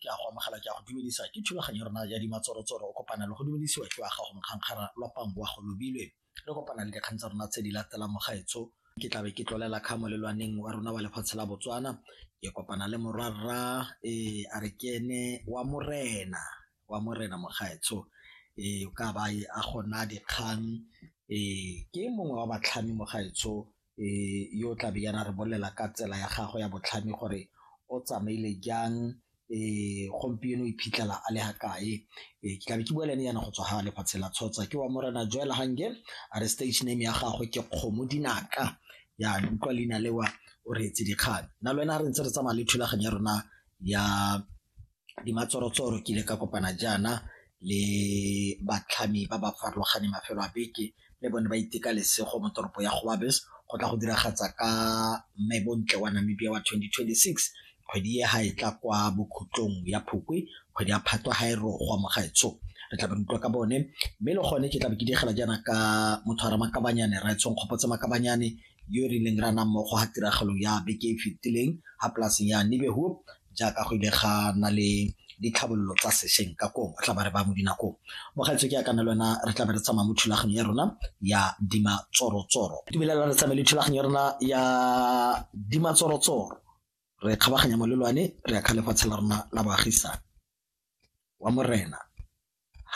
ke a go amogela ke a go dumedisa ke thulaganyo rona ya dimatsorotsoro o kopana le go dumedisiwa ke wa gago mokgankgara lwapang wa go lobilwe re kopana le dikgang tsa rona tse di latelang mogaetso ke tlabe ke tlolela kga molelwaneng wa rona wa lefatshe la botswana ke kopana le morwarra ee a re ke ene wa morena wa morena mogaetsho ee o ka ba a gona dikgang ee ke mongwe wa batlhami mogaetsho e yo tla be yana re bolela ka tsela ya gagwe ya botlhami gore o tsamaile jang e gompieno o iphitlhela a le ga kae e ke tlabe ke bua le ene yana go tswa ga lefatshe la tshotsa ke wa morena joela gange a re stage name ya gagwe ke kgomo dinaka ya utlwa leina lewa o reetse dikgang na le wena re ntse re tsamaya le thulaganyo ya rona ya Dimatshorotsoro ke ile ka kopana jaana le batlhami ba ba farologaneng mafelo a beke le bone ba iteka lesego mo toropo ya Goabes go tla go diragatsa ka mme bontle wa Namibia wa 2026 kgwedi e ga e tla kwa bokhutlong ya phukwe kgwedi ya phatwa ga e rogwa mo gaetsho re tla be re utlwa ka bone mme le gone ke tla be ke digela jaana ka motho a ramakabanyane ra etshong kgopotse makabanyane yo e rileng re anang mmogo ga tiragalo ya beke e fetileng ga polaseng ya Nibehoop jaaka go ile ga na le ditlhabololo tsa sešweng ka kong re tla ba re ba mo dinakong mogaetso ke ya kana le wena re tla be re tsamaya mo thulaganyo ya rona ya dima tsorotsoro dumelela re tsamaye le thulaganyo ya rona ya dima tsorotsoro re kgabaganya molelwane re ya kga lefatshe la rona la baagisane wa Morena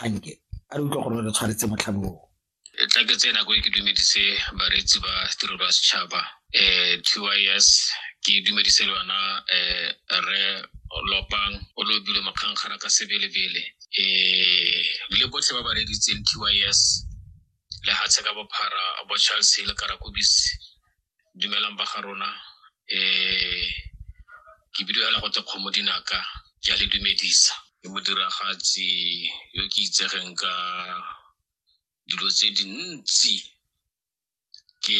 Hanke a re utlwa gore re tshwaretse motlhabi oo. E tla ke tse nako e ke dumedise bareetsi ba tirelo ya setšhaba um TYS ke dumedise le yona um re lopang o lobile makgangkgara ka sebelebele um le botlhe ba ba reeditseng TYS lehatshe ka bophara bo charles le karakobisi dumelang ba ga rona um ke bidio ya legote kgomo dinaka ke a le dumedisa ke modiragatsi yo ke itsegeng ka dilo tse dintsi ke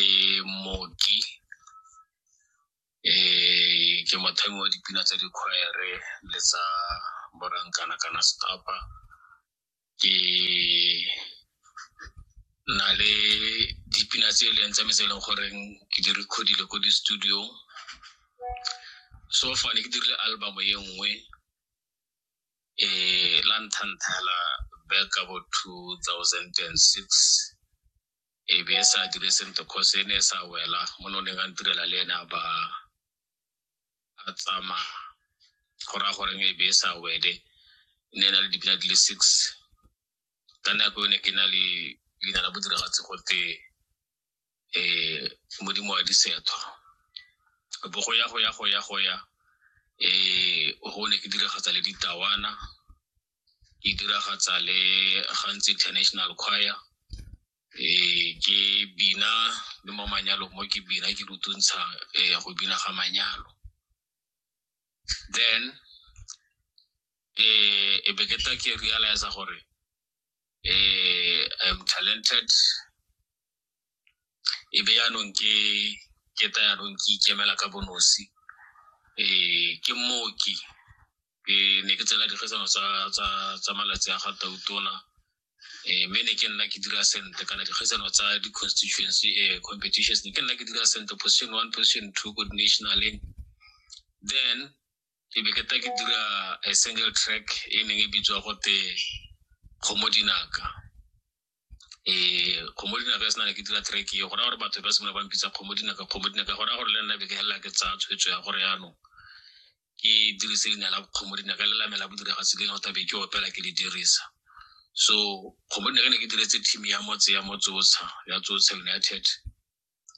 moki um ke mothami wa dipina tsa dikgwere le tsa borankana kana stapa ke na le dipina tse e leng tsa me tse e leng goreng ke di recordile ko di-studio so fane ke dirile album e nngwe um la nthanthela back abo two thousand and six e be e sa dire sentle cause e ne e sa wela mo ne o neng a ntirela le ene a ba a tsamaya go raya gore e be e sa wele e ne e na le dipina di le six ka nako e ne ke na le leina la bodiragatsi gote um modimo wa disetho bo go ya go ya go ya go ya um go ne ke diragatsa le ditawana ke diragatsa le gantsi international choir ee ke bina le mo manyalong mo ke bina ke rutuntsha ee go bina ga manyalo then eh e be ke tla ke realize gore eh I'm talented e be yaanong ke ke ta yaanong ke ikemela ka bonosi eh ke mooki ke ne ke tsela dikgetsano tsa malatsi a ga tautona um mme ne ke nna ke dira sentle kana dikgetsano tsa di-constituency um competitions ne ke nna ke dira sentle position one position two ko di-nationaleng then ke be ke ta ke dira a single track e neng e bitswa gote kgomo dinaka eh kgomo dinaka se na le ke dira track e go raya gore batho ba simolola ba mpitsa kgomo dinaka kgomo dinaka go raya gore le nna be ke helela ke tsaya tshwetso ya gore yaanong ke dirise leina la kgomo dinaka le lamela bodiragatsi le nota be ke opela ke le dirisa so kgomo dinaka ne ke diretse team ya motse ya motsotsha ya tsotsha united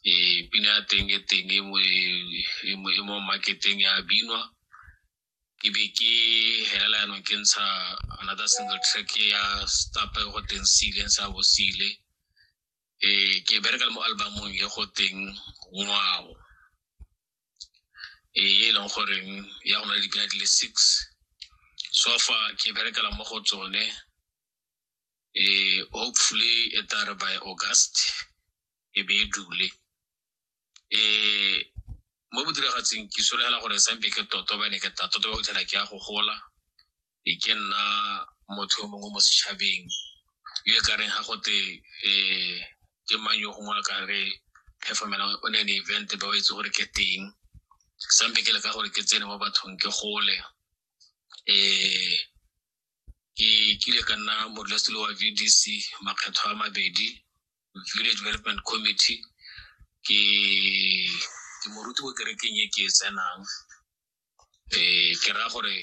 eh pina ya teng e teng e mo e mo marketeng ya binwa ke be ke helela yanong ke ntsha another single track ya stop e go teng sile ntsha bo sile eh ke bereka le mo albumong e go teng ngwao e e leng goreng ya go na le dipina di le six so fa ke berekela mo go tsone eh hopefully e tare by august e be e dule um mo bodiragatsing ke solegela gore sampe ke toto bane ke ta toto ba fitlhela ke ya go gola e ke nna motho yo mongwe mo setšhabeng yo e kareng ga gote um ke mang yo gongwe a ka re performela o ne ne event ba o itse gore ke teng sampe ke leka gore ke tsene mo bathong ke gole um ke kile ka nna modulasetilo wa v d c makgetho a mabedi village development committee ke ke moruti ko kerekeng e ke e tsenang um ke raya gore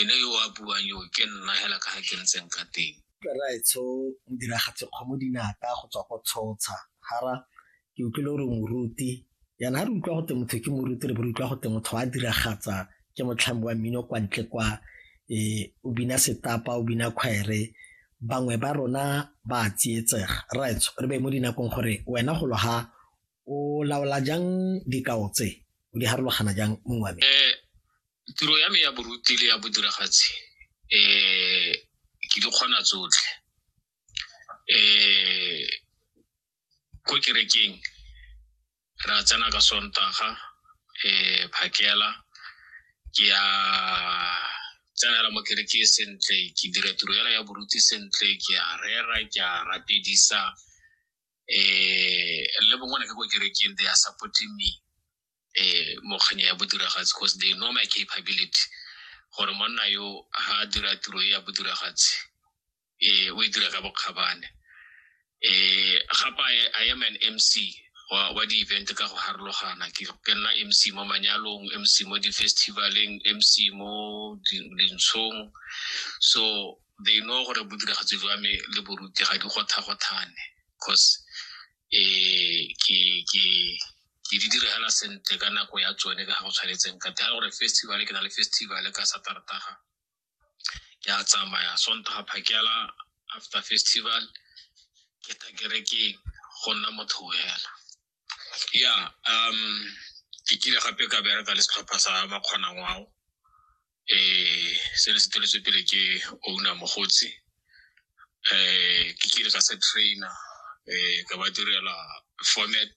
ene yo a buang yo ke nna hela ka ga ke ntseng ka teng raetsho modiragatse kgomo dinata go tswa go tshotsha hara ke utlwile gore moruti yana ga re utlwa go teng motho ke moruti re bo re utlwa go teng motho wa diragatsa ke motlhami wa mmino kwa ntle kwa eh, o bina setapa o bina khwaere bangwe ba rona ba tsietsega right re be mo dinakong gore wena go loga o laola jang dikao tse o di harologana jang mongwe wa me eh, tiro ya me ya boruti le ya bodiragatsi um ke di kgona tsotlhe um ko kerekeng re a tsena ka sontaga um phakela ke ya tsenela mo kereke e sentle ke dira tiro ela ya boruti sentle ke a rera ke a rapedisa um le bongwe ne ke ko kerekeng they are supporting me um mokganya ya bodiragatsi because they know my capability gore monna yo ha dira tiro e ya bodiragatsi eh o e dira ka bokgabane eh gapa i am an mc wa wa di event ka go harologana ke ke nna mc mo manyalong mc mo di festivaleng mc mo di- dintshong so they know gore bodiragatsi jwa me le boruti ga di gothagothane cause eh ke ke ke di direla sentle ka nako ya tsone ka ga go tshwanetseng ka tela gore festival ke na le festival ka satartaga ke a tsamaya sontaga phakela after festival ke ta kerekeng go nna motho hela ya um ke kile gape ka bereka le setlhopha sa makgonang ao eh se ne se teletswe pele ke owner mogotsi eh ke kile ka se trainer eh ka ba direla format